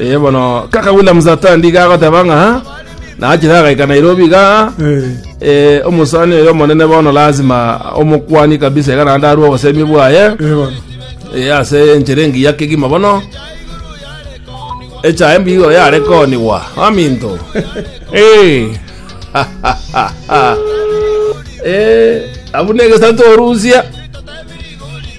Eh, bono kaka Williams atandi gagoteba ng'a nachire agaika Nairobi iga Eh, eh, omosani oyo omonene bono lazima omokwani kabisa iga naende arue obosemi bwaye eh, bono. eh, ase enchera engiya kegima bono echae mbigo yarekoniwa aminto Eh, eh, abuna egesato orusia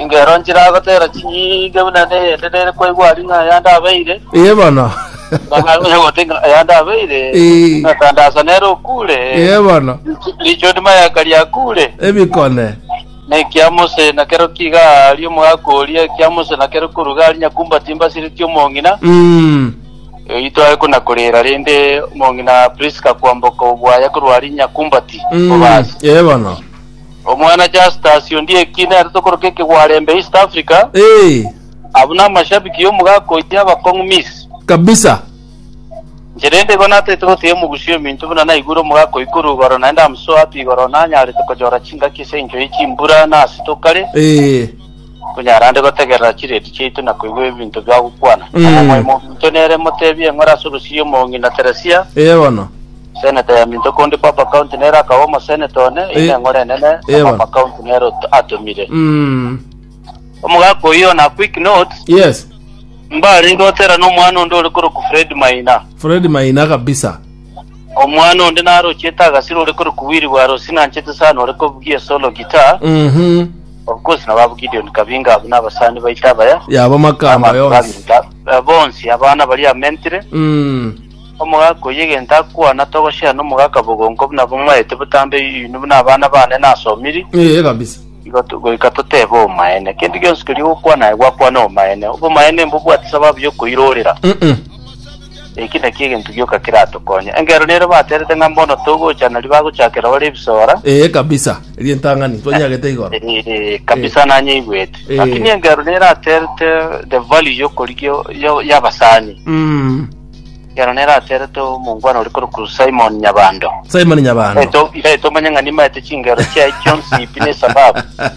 Inga ero nchiragoteera chinyinge buna neyende nere kwaigwa aria ng'a yande abeire, Ee bono. ng'a onye gote ng'a yande abeire, Ee. ng'a tandasa nere okure, Ee bono. richoni mayaka riakure. Ebikone. Na ekia Mose nakero kiiga aria omogaka oria, ekia Mose nakero koruga aria nyakumbati mbasiretie omong'ina, Mm. oitwa aye konakorera rende omong'ina Priska kwamboka obwaya korwa aria nyakumbati Mm. obasi. Ee bono. Omwana Justus onde eki nerete okoroka ekegwarembe East Africa. Ee. Abwo namashabiki yomogaka oye abakong'u Miss. Kabisa. Inche rende igo nataete goteebia Omogusia ominto buna naigure omogaka oyio korwa igoro naende amosoe abe igoro nanyarete kochora chingaki ase engencho ye chimbura na ase tokare. Ee. Konyara nde gotegerera chireedi chiaito na koigwa ebinto bia gokwana. Mm. Nabo omoyo mominto nere motebie eng'ore ase orosiria omong'ina Teresia, Ee bono. Seneta ya minto konde Papa County nere akaba omoseneta one, eyi Eh. neng'ore enene, na Ee, Papa bono. County nere ot- atomire. Mm. Omogaka oyio on a quick note, Yes. mbarenge goterana omwana onde ore korokwa Fred Maina. Fred Maina kabisa. Omwana onde narochiete agasira ore korokwa Willy Bwarosi nanchete sana ore kobugia esolo guitar. Mhm. Of course nabo abo Gideon Kabinga abo nabasani baito abaya. Yaba makamba Abantu yonsi. babinta eh, bonsi abana bari amentire. Mm. Omogaka oyo egento akwana togoshare nomogaka bogonko buna bomaete botambe yuni buna abana bane nasomiri. Eh, kabisa. Igo to- goika totebe omaene. Kento gionsi keria ogokwana aye gwakwana omaene. Obomaene mbobwate sababu yokoirorera. Mhm. Eki nakio egento gioka keratokonye. Engeero nere baterete ng'a mbono togocha nari bagochakera bare ebisora. Ee kabisa, eria entang'ani twanyagete igoro. Eh, kabisa nanyeigwete. Eh. Lakini engeero nere aterete the value y'okorigia yo- y'abasani. Mm. Engeero nere aterete omongwana ore korokwa Simon Nyabando. Simon Nyabando. Eto- Iga etomanye ng'a nimaete chingero chiaye chionsi pi nesababu.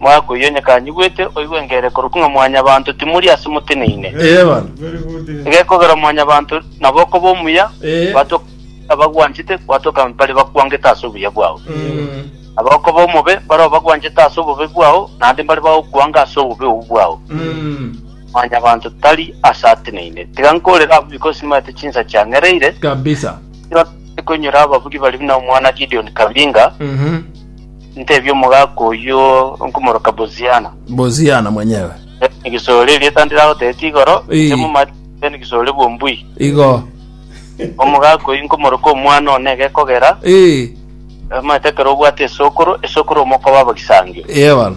Moaka oyio onye kanyigwete, oigwengere korokwo ng'a Mwanyabaanto timori ase moteneine. Ee bana. Egekogera Mwanyabaanto nabo okoba omuya, Ee. gwatoka abagwanchete, gwatoka baria bakwangete ase obuya bwao. Nabo okoba omobe, baria obagwanchete ase obobe bwao, naende baria bagokwanga ase obobe obwo bwao. Mwanyabaanto tari ase ateneine. Tiga nkoorere abwo biko simanyete chinsa chiang'ereire, Kabisa. ekero nkoinyora ababugi baria buna omwana Gideon Kabinga, Mhm. ntebie omogaka oyio nkomoroka Boziana. Boziana mwenyewe. Egesore erieta ndiragotebete igoro, Ee. inche momati egesore bw'ombui. Igo. Omogaka oyio nkomoroka omwana one gekogera, Ee. omanyete ekero obwate esokoro, esokoro omokoba abagisangio. Ee bono.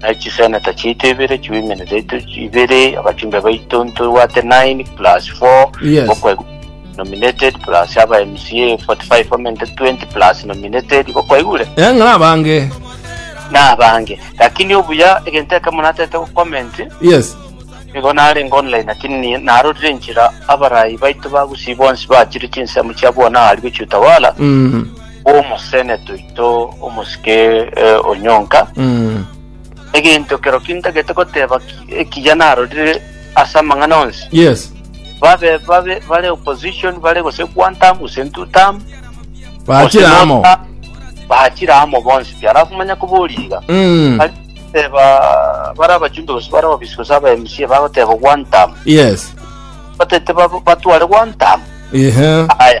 Naye chiseneta chiaito ibere chiwomen zaito ibere abachumbe baito ntobwate 9 plus 4 Yes. gokwa nominated plus aba mca 45 women 20 plus nominated gokwaigure Eh, ng'ana abange nabange lakini obuya egento ekemo natete gucomment yes nigo narenge online lakini ni- narorire enchera abarayi baito bagusi bonsi bachire chinsemo chia bwana ari gochia utawala mm. bw'omoseneto oito omosike eh, onyonka, Mm. egento kero kintagete goteba ki- ekiya narorire ase amang'ana onsi Yes. babe babe bare opposition bare gose one term gose two term Bachira gose amo. no term, bachira amo bonsi pi alafu manya koboriga Mm. Ari- teba bare abachumbe gose bare ababisi gose aba mc bagoteba one term Yes. batete bab- batware one term Ehe. aya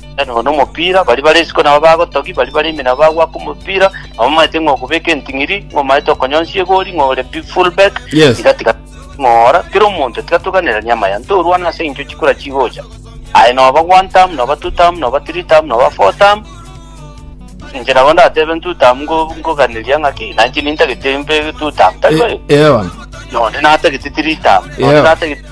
Nero nomopira, baria bare isiko nabo bagotogia, baria bare ime nabo bagwaka omopira, nabo omaete ng'a okobeka enting'iri, ng'a omaete okonyonsia egori, ng'a ore bi- full back, Yes. tiga tiga ng'ora kera omonto tiga toganeranie amaya, ntorwane ase eng'encho chikura chigocha. Aye noba one term, noba two term, noba three term, noba four term, inche nabo ndatebe two term ngo- ngoganeria ng'a ki, nainche nintagete mbe two term, tari boigo? Eoa. Nonde natagete three term, nonde Yeah. natagete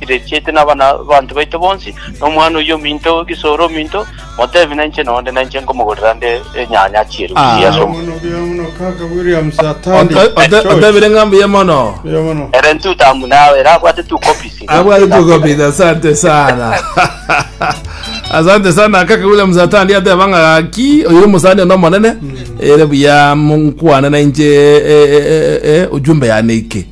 Irechete nabanto baito bonsi, na omwana oyio ominto, egesooro ominto, motebi na inche nonde, na inche nkomogorera nde enyanya chierugi ase omogondo. Otebire ng'a mbuya mono. Ere ntutamu nawe, ere abwate tu copies. Abwate tu copies, asante sana. asante sana kaka Williams atandi ateba ng'a gaki oyo omosani ono omonene ere buya nkwane na inche ujumbe yane ike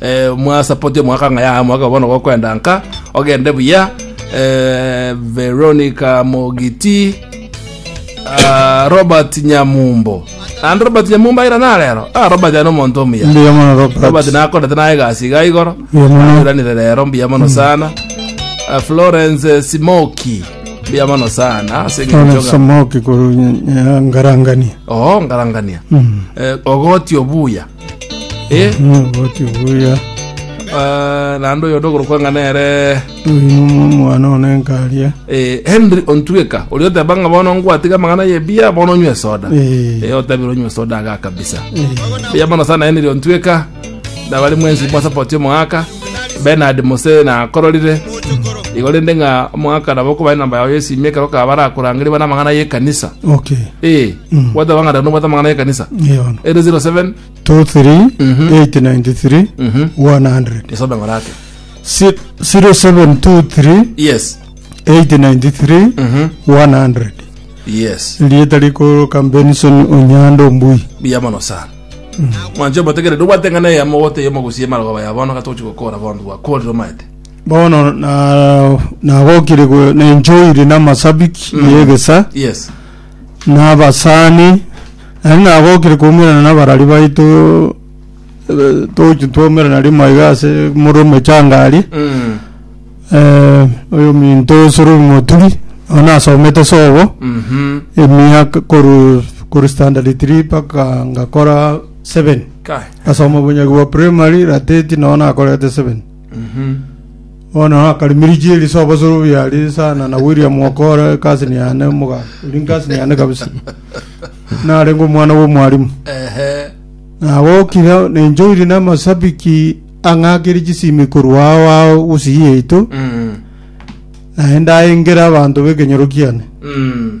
eh, mwa support omwaka ng'a yaya omwaka bono gokwenda nka ogende buya eh, veronica mogiti ah, robert nyamumbo and robert nyamumbo aira narero ah, robert ano omonto omuya Mbuya mono robert Robert. nakorete naye egasi iga igoro Mbuya mono. nanyuranire rero mbuya mono sana Eh, florence eh, simoki mbuya mono sana ase eng'encho Florence ng'a- Samoki kuru Ngarangani. oo ngarangania Eh, ogoti obuya Eh, Naboti buya. ah, naende oyo ndogorokwa ng'a nere Uyu nimwe omwana one nkaria. eh, henry ontueka oria oteba ng'a bono ngwatiga amang'ana yebia bono onywe esoda Eh. Eh, otabire onywe esoda aga kabisa buya mono sana henry ontueka ndabari mwensi mwasapoti omogaka benard mose nakororire igo rende ng'a omogaka nabo okobae namba yao yesimi ekero kaba barakorangeri bana amang'ana y'ekanisa Okay. Eh, Bwate abang'ata no bwate amang'ana y'ekanisa. Eyono. Ere 07 23 893 100 Nisobe ng'ora ake. Si- 0723 Yes. 893 100 Yes. rieta rikoroka benson onyando mbui Biya mono sana. Mwanche omotegere no bwate ng'ana ya mogote yomo gusie marogo baya bono gatochi gokora bondo bwa kori romaete. bono na- nagokire go- nenchoire namasabiki yegesa Yes. na abasani, naende nagokire koumerana nabarari baito eh, togochia twaumerana rimo iga ase more omechanga aria Mm. eh, oyo minto osoro moturi nao nasomete sobo Mhm. emiaka koru koru standard 3 mpaka ngakora 7 Kai. asoma obunyagi bwa primary rateti nao nakorete 7 Bono akarimirichia eri sobo sobo biarie sana na William Okora cousin yane muga eri cousin yane kabisa narenge omwana bwa omwarimu Ehe. nagokire nenchoiri na amasabiki ang'akire chisimi korwa ao ao gusii yaito Mm. naende aengere abanto b'ekenyoro kiane Mm.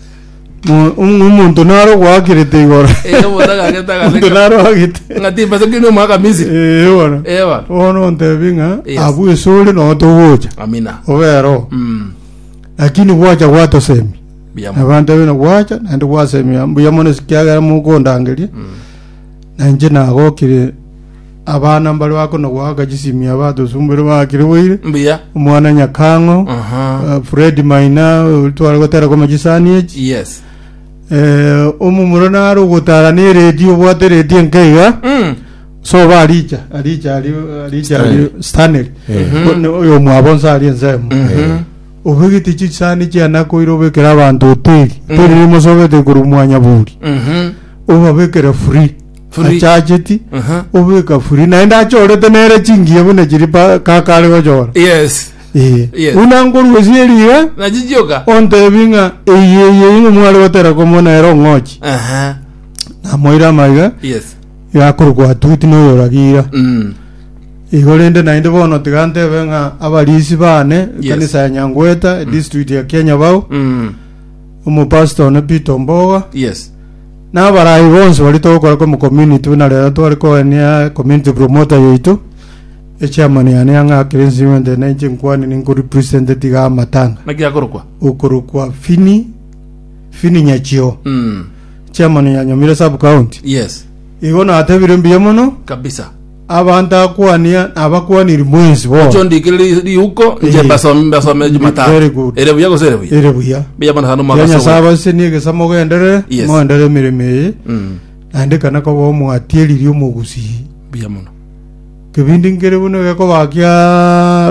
Mo- omonto naro gwakerete igoro Eh, omonto agagete agaseka. omonto naro agete Ng'a timba se kiri omwaka Misiri. Eh, bono Eh, bono. bono ontebi ng'a Yes. abu ase ore nogo togocha Amina. obero Mm. lakini gwacha gwatosemi Biyamo. abantu abino gwacha naende gwasemia mbuya mono ekiagera mokondangeria na inche nagokire Abana mbareo akonagoaka chisimia abatosumbuire baakiriboire. Mbuya. Omwana Nyakang'o, Aha. eh, Fred Maina ori tware gotera koma chisani echi. Yes. Eh, omomura nare ogotara ne redio obwate redio enke iga. Mm. Soba aricha, aricha ari aricha ari Stanley. Stanley. Eh. One oyo mwabo nsa ari ensemo. Mhm. Obegete chisani chiana koira obekera abanto hoteli. Hoteli Mm. rimo sobete korwa mwanya buri. Mhm. Obabekere free. Furi. achacheti Aha. obeka furi naende achorete nere chingiya buna chiri pa- kaka are gochora Yes. Ee. Yes. buna nkoruesie riga Nachichioka. ontebi ng'a eye eye ing'o mware gotera komona ere ong'ochi Aha. namoira amaiga Yes. yakoro gwatuti noyoragira Mm. igo rende naende bono tiga ntebe ng'a abarisi bane Yes. ekanisa ya nyangweta district ya kenya bao Mm. omopasita one peter omboga Yes. Na abarai bonsi baria togokora kwa Community buna rero tware koenia Community Promoter yaito, Echairman yane ang'e akere Nsimete na inche nkwane ninko represented iga amatanga. Naki akorokwa? Okorokwa Fini, Fini Nyachio, Mm. Chairman yanyomire Sub County. Yes. Igo natebire mbuya mono. Kabisa. Abanto akwania nabakwaniri mwensi bono. Gocha ondikere ri- riuko inche Eye. mbasome mbasome Very jumatano good. ere buya gose ere buya Ere buya. buya bono sana Ya omwaka Nyasae sogo abasenie egesa mogenderere, Yes. mogenderere emeremo eye. Mm, Naende ekana koba omwatieriri omogusii. buya mono Kebindi nkere buna gekobakia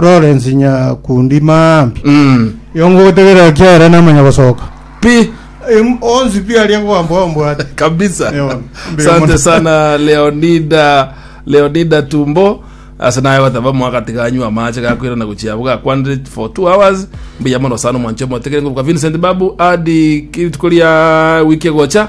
Lawrence Nyakundi Maambi. Mm, Yongo gotegerera kiaera namanya gosoka. pi Em- onsi pi aria kwambwa mbwate kabisa Ewa, mbere asante mono. sana leonida leonida tumbo ase naye goteba mwagati ganywa amache gakwira na gochia abo gakwanire for two hours mbuya mono sana omwancho omotegere ngobuka vincent babu adi kirituko ria wiki egocha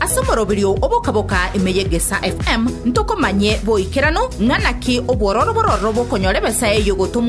Ase omoroberio oboka-boka ime y'Egesaa FM ntokomanye boikeranu ng'a naki obwororo bororo bokonyora ebesa eye y'ogotomwa